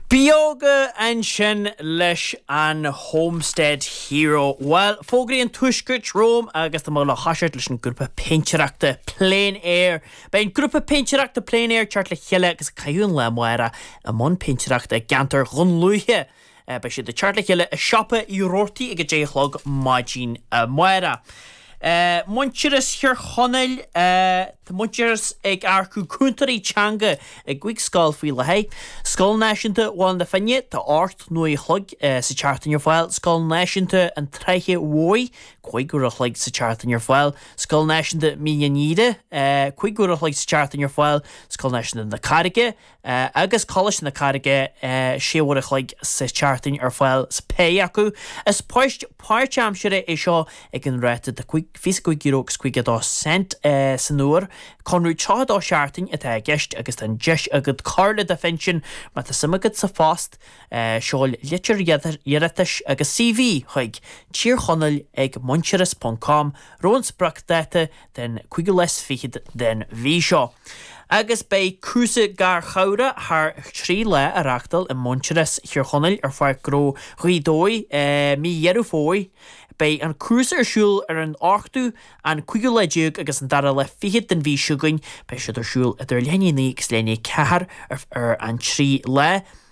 Beoga ansin leis an Homestead Hero. Bhuel, fógraí an Tuaiscirt romham agus tá mé ag toiseacht leis an grúpa péintéireachta Plein Air. Beidh an grúpa péintéireachta Plein Air ag teacht le chéile agus ag caitheamh an lá amárach i mbun péintéireachta i gceantar Dhún Lúiche, Beidh siad ag teacht le chéile i Siopa Uí Roarty ag a deich a chlog maidin amáireach. Muintearas Thír Chonaill Tá Muintearas ag earcú cúntóirí teanga i gcúig scoil faoi láthair. Scoil Náisiúnta Bhaile na Finne Tá ocht n-uair an chloig sa tseachtain ar fáil. Scoil Náisiúnta an tSratha Mhóir Cúig uair an chloig sa tseachtain ar fáil. Scoil Náisiúnta Mín an Aoire Cúig uair an chloig sa tseachtain ar fáil. Scoil Náisiúnta na Carraige. Agus Coláiste na Carraige 6 uair an chloig sa tseachtain ar fáil sa phéire acu, is poist páirt-aimsire iad seo ag an ráta de €25 agus 52 cent san uair. Conradh 32 seachtain atá i gceist agus tá an deis agat cur le do phinsean má tá suim agat sa phost. Seol litir iarratais agus CV chuig, Tír Chonaill ag Muintearas ponc com, roimh an spriocdáta den 5ú lá is 20 den mhí seo agus beidh cúrsa garchabhrach thar 3 lá á reáchtáil i Muintearas Thír Chonaill ar Pháirc Gnó Ghaoth Dobhair i mí Dheireadh Fómhair. Beidh an cúrsa ar siúl ar an 8ú, an 15ú lá agus an 2ú lá is fichead den mhí seo chugainn. Beidh siad ar siúl idir leath i ndiaidh 9 agus leath i ndiaidh 4 ar an 3 lá.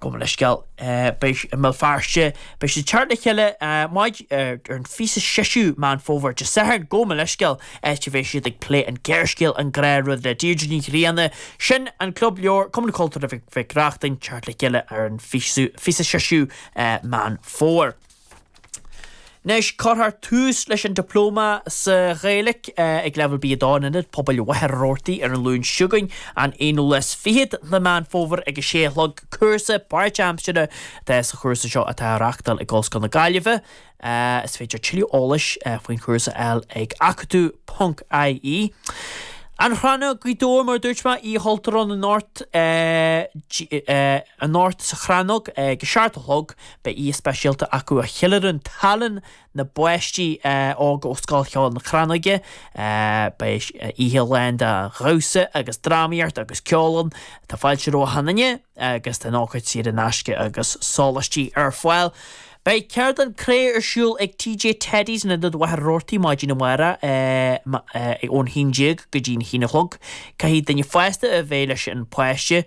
Gabhaim mo leithscéal. Beidh i mBéal Feirste. Beidh siad ag teacht le chéile maidin ar an 26ú Meán Fómhair, Dé Sathairn, gabhaim mo leithscéal, áit a bheidh siad ag plé an gearrscéal An Gnáthrud le Deirdre Ní Ghrianna. Sin an Club Leabhar, Cumann Cultúrtha Mhic Reachtain, ag teacht le chéile ar an 26ú Meán Fómhair. Anois, cuirfear tús leis an Dioplóma sa Ghaeilic ag leibhéal B2 in Ionad Pobail Mhachaire Rabhartaigh ar an Luan seo chugainn, an 21ú de Mheán Fómhair ag a sé a chlog. Cúrsa páirt-aimsire atá sa chúrsa seo atá á reáchtáil ag Ollscoil na Gaillimhe. Is féidir tuilleadh eolais faoin chúrsa a fháil ag acadú ponc ie. An Chrannóg, Gaoth Dobhair Mar a dúirt mé, Oíche Chultúir ann anocht, anocht sa Chrannóg ag a seacht a chlog. Beidh oíche speisialta acu a cheiliúrann tallann na bpáistí óga ó Scoil Cheoil na Crannóige. Beidh oíche lán de dhamhsa agus drámaíocht agus ceol ann. Tá fáilte roimh achan duine agus tá an ócáid saor in aisce agus sólaistí ar fáil. Beidh ceardlann chré ar siúl ag TJ Teddy's in Ionad Mhachaire Rabhartaigh maidin amárach ón haon déag go dtí an haon a chlog. Caithfidh duine fásta a bheith leis an pháiste.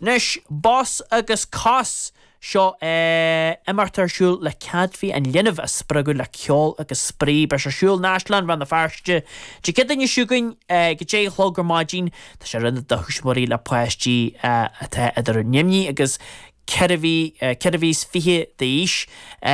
Anois, bos agus cos! Seo é, imeacht atá ar siúl le céadfaí an linbh a spreagadh le ceol agus spraoi. Beidh sé ar siúl in Áislann Rann na Feirste, Dé Céadaoine seo chugainn ag a deich a chlog ar maidin. Tá sé oiriúnach do thuismitheoirí le páistí atá idir naoi mí agus ceithre mhí, ceithre mhí is fiche d'aois.